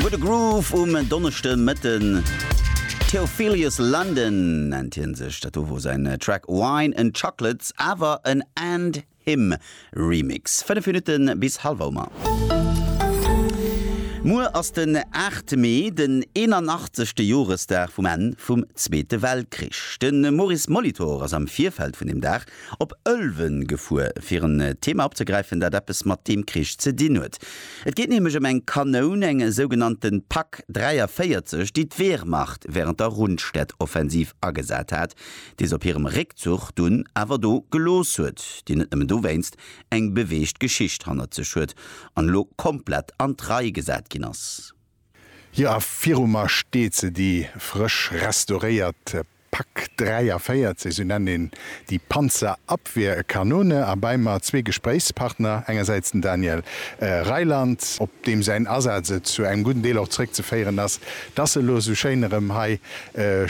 What a Groove um Donneschdemëtten. Theophilus London nennt hien sech. Dat do wor säin Track Wine and Chocolates, awer en And Him Remix. 5 Minutte bis Hallwouma. Muer ass den 8 Mee, den 81. Joresdag vum Enn vum Zweete Weltkrich. De Maurice Molitor ass am Virfeld vun deem Dag Op Ëlwen gefuer, fir en Thema opzegräifen, dat eppes mat deem Krich ze dinn huet. Et geet nämlech ëm eng Kanoun, eng sougenannte Pak 43, déi d'Wehrmacht wärend der Rundstedt-Offensiv agesat hat, déi se op hirem Réckzuch dunn awer do gelooss huet, déi net nëmmen dowéinst eng beweegt Geschicht hannert sech huet an elo komplett an d'Rei gesat ginn ass. Jo, a viru mer steet se, déi frësch restauréiert Pak 43, esou nennt een déi Panzerabwehrkanone, a bei mer zwee Gespréichspartner, engersäits den Daniel Reiland, op deem säin Asaz et zu engem gudden Deel och zeréckzeféieren ass, dass e lo esou schéin erëm hei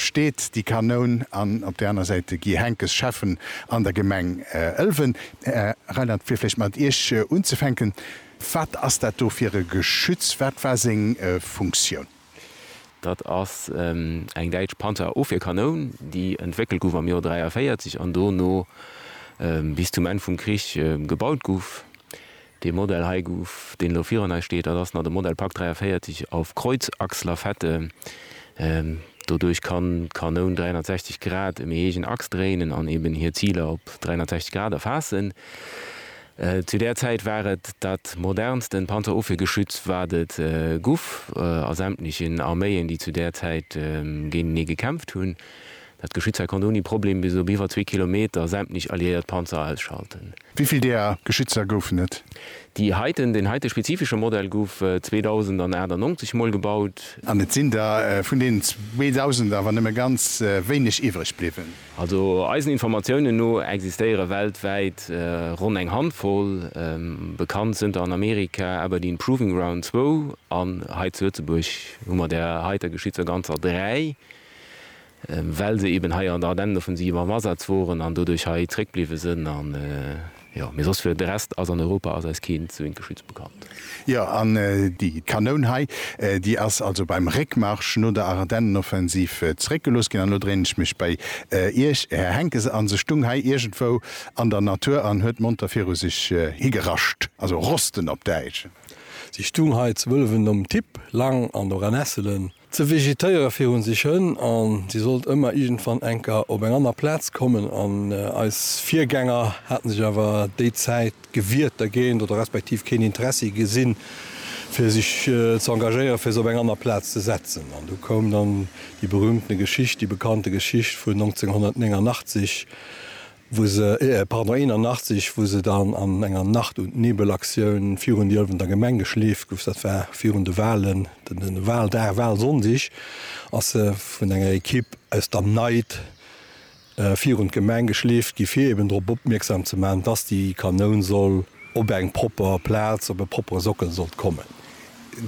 steet, déi Kanoun, an op där aner Säit de Guy Henckes, Schäffen an der Gemeng Ëlwen. Här Reiland, fir vläicht mat Iech unzefänken, Wat ass dat do fir e Geschütz? Wat war seng Funktioun? Dat ass eng däitsch Panzerofwierkanoun, déi entwéckelt gouf am Joer 43 an dono bis zum Enn vum Krich gebaut gouf. Dee Modell hei gouf, deen elo virun eis steet, dat ass nach de Modell Pak 43 auf Kreuzachslafette. Doduerch kann d'Kanoun 360 Grad ëm ee héijen Aks dréinen an eben hir Ziler op 360 Grad erfaassen. Zu där Zäit war et dat modernsten Panzerofwiergeschütz, wat et guff a sämtlechen Arméien, déi zu där Zäit géintenee gekämpft hunn. Dat Geschütz hei konnt ouni Problem bis op iwwer zwee Kilometer sämtlech alliéiert Panzer ausschalten. Wéi vill deeër Geschützer goufen et? Déi heiten, deen heite spezifesche Modell guff 2098 mol gebaut. An et sinn der vun deenen 2000 awer nëmme ganz wéineg iwwreg bliwwen. Also eisen Informatiounen no existéiere weltwäit ronn eng Handvoll, bekannt zënter an Amerika Aberdeen Proving Ground zwou an hei zu Lëtzebuerg hu mer der heiter Geschitt souer ganzer dräi, well se eben hei an der Ardenneneoffensiv am Asaz woren an doduerch hei zréckbliwwe sënn. Jo, mee soss fir de Rest ass an Europa ass eis keen Zwinkelschütz bekannt. Jo, an déi Kanoun hei, déi ass also beim Réckmarsch no der Ardennenoffensiv zeréckgelooss ginn. An elo dréinen ech mech bei Iech, Här Henckes, an se stung hei iergendwou an der Natur an huet monter viru sech higerascht, also rosten op Däitsch. Si stung hei zu Wëllef nom Tipp, Lang an Oranesselen. Ze vegetéiere fir hunn sech Hënn a si sollt ëmmer iergendwann enker op eng aner Plaz kommen an eis Virgänger haten sech awer déi Zäit gewiert dergéint oder respektiv keen Interessi gesinn fir sech ze engagéiere fir se op eng aner Plaz ze setzen. An du koum dann déi berühmtene Geschicht, déi bekannte Geschicht vun 1989, wou se, pardon, 81, wou se dann an enger Nacht und Nebel Aktioun virun déi Ëlwener Gemeng geschleeft gouf, dat war virun de Walen, den Waldag, Walsonndeg, ass se vun enger Ekipp aus der Neit virun d'Gemeng geschleeft gi fir eben drop opmierksam ze maachen, dass déi Kanoun soll op eng propper Plaz, op e proppere Sockel sollt kommen.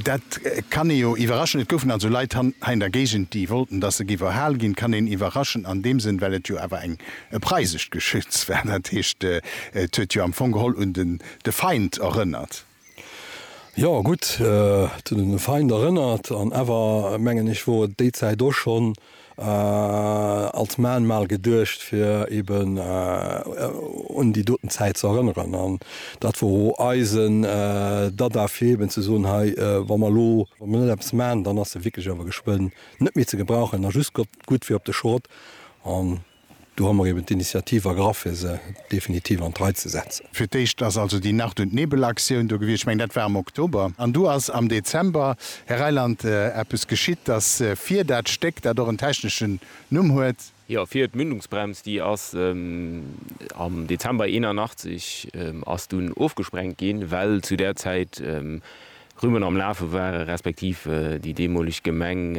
Dat kann ee jo iwwerraschen. Et goufen also Leit hei an der Géigend, déi wollten, dass se géif erhal ginn. Kann een iwwerraschen an deem Sënn, well et jo awer eng e preisescht Geschütz war. Dat heescht, et huet jo am Fong geholl un den de Feind erënnert. Jo, gutt, et huet un de Feind erënnert an awer, mengen ech, wor et déi Zäit och schonn als Mahnmal geduecht fir eben un déi doten Zäit ze erënneren an dat wor o eisen Dada fir eben ze soen, hei wa mer elo, wa mer net eppes man, dann ass se wierklech awer geschwënn net méi ze gebrauchen a just gutt fir op de Schrott. Do hu mer eben d'Initiativ ergraff, fir se definitiv an d'Rei ze setzen. Fir d'éischt ass also déi Nacht und Nebel Aktioun do gewiescht, ech mengen, dat war am Oktober. An du ass am Dezember, Här Reiland, eppes geschitt, dass fir dat Stéck, dat och en techneschen Numm huet, Jo, fir d'Mündungsbrems, déi ass am Dezember 81 ass dunn ofgesprengt ginn, well zu där Zäit Rüben am Lafe ware respektiv déi deemoleg Gemeng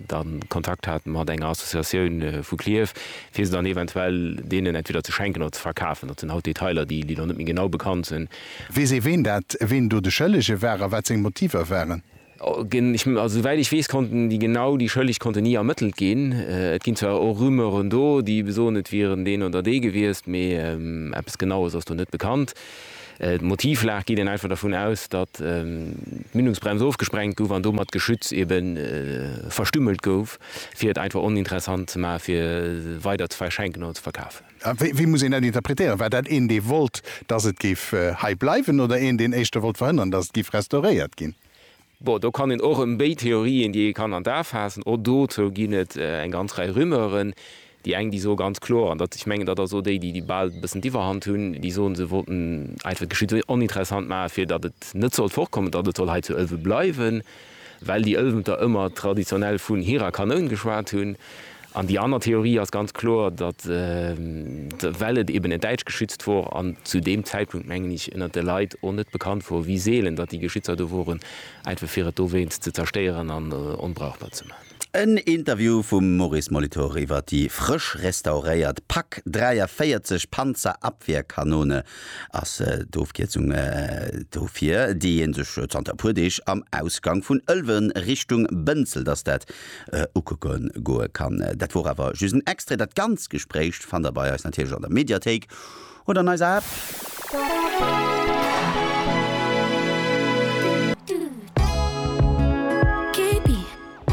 da Kontakt hat mat enger Associatioun vu Clierf, fir se dann eventuell deenen entweder ze schenken oder ze verkafen. Dat sinn haut Detailer, déi elo net méi genau bekannt sinn. Weess ee, ween dat, ween do de Schëllege war a wat seng Motiver waren? Also souwäit ech weess, konnten déi genau déi Schëlleg konnten ni ermëttelt ginn. Et ginn zwar och Rumeuren do, déi besoen, et wieren deen oder dee gewiescht, mee eppes Genaues ass do net bekannt. D'Motivlag geet een einfach dervun aus, datt d'Mündungsbrems ofgesprengt gouf an domat d'Geschütz ebe verstümmelt gouf, fir et einfach oninteressant ze maachen, fir weider ze verschenken oder ze verkafen. Wéi muss een dat interpretéieren? War dat een, dee wollt, datt et géif hei bleiwen, oder een, deen éischter wollt verhënnern, datt et géif restauréiert ginn? Bon, do kann een och ëm béid Theorien, déi ee kann an d'A faassen. Och dozou ginn et eng ganz Rei Rumeuren. Déi eng, déi soe ganz kloer, an dat, ech mengen, dat ass och déi, déi bal e bëssen d'Iwwerhand hunn, déi soen, se wollten einfach d'Geschicht esou oninteressant maachen, fir datt et net sollt fortkommen, datt et soll hei zu Ëlwen bleiwen, well déi Ëlwenter ëmmer traditionell vun hirer Kanoun geschwat hunn. An déi aner Theorie ass ganz kloer, datt well et eben en Däitschgeschützt wor an zu deem Zäitpunkt, mengen ech, ënnert de Leit och net bekannt wor, wéi seelen datt déi Geschützer do woren, einfach fir et dowéinst ze zerstéieren an onbrauchbar ze maachen. En Interview vum Maurice Molitor iwwer déi frësch restauréiert Pak 43 Panzerabwehrkanone ass d'Ofkierzung dofir, déi ee sech zanter e puer Deeg am Ausgang vun Ëlwen Richtung Bënzelt ass dat ukucke goe kann. Dat wor awer just en Extrait, dat ganzt Gespréich fannt der bei eis natierlech an der Mediathéik oder an eiser App.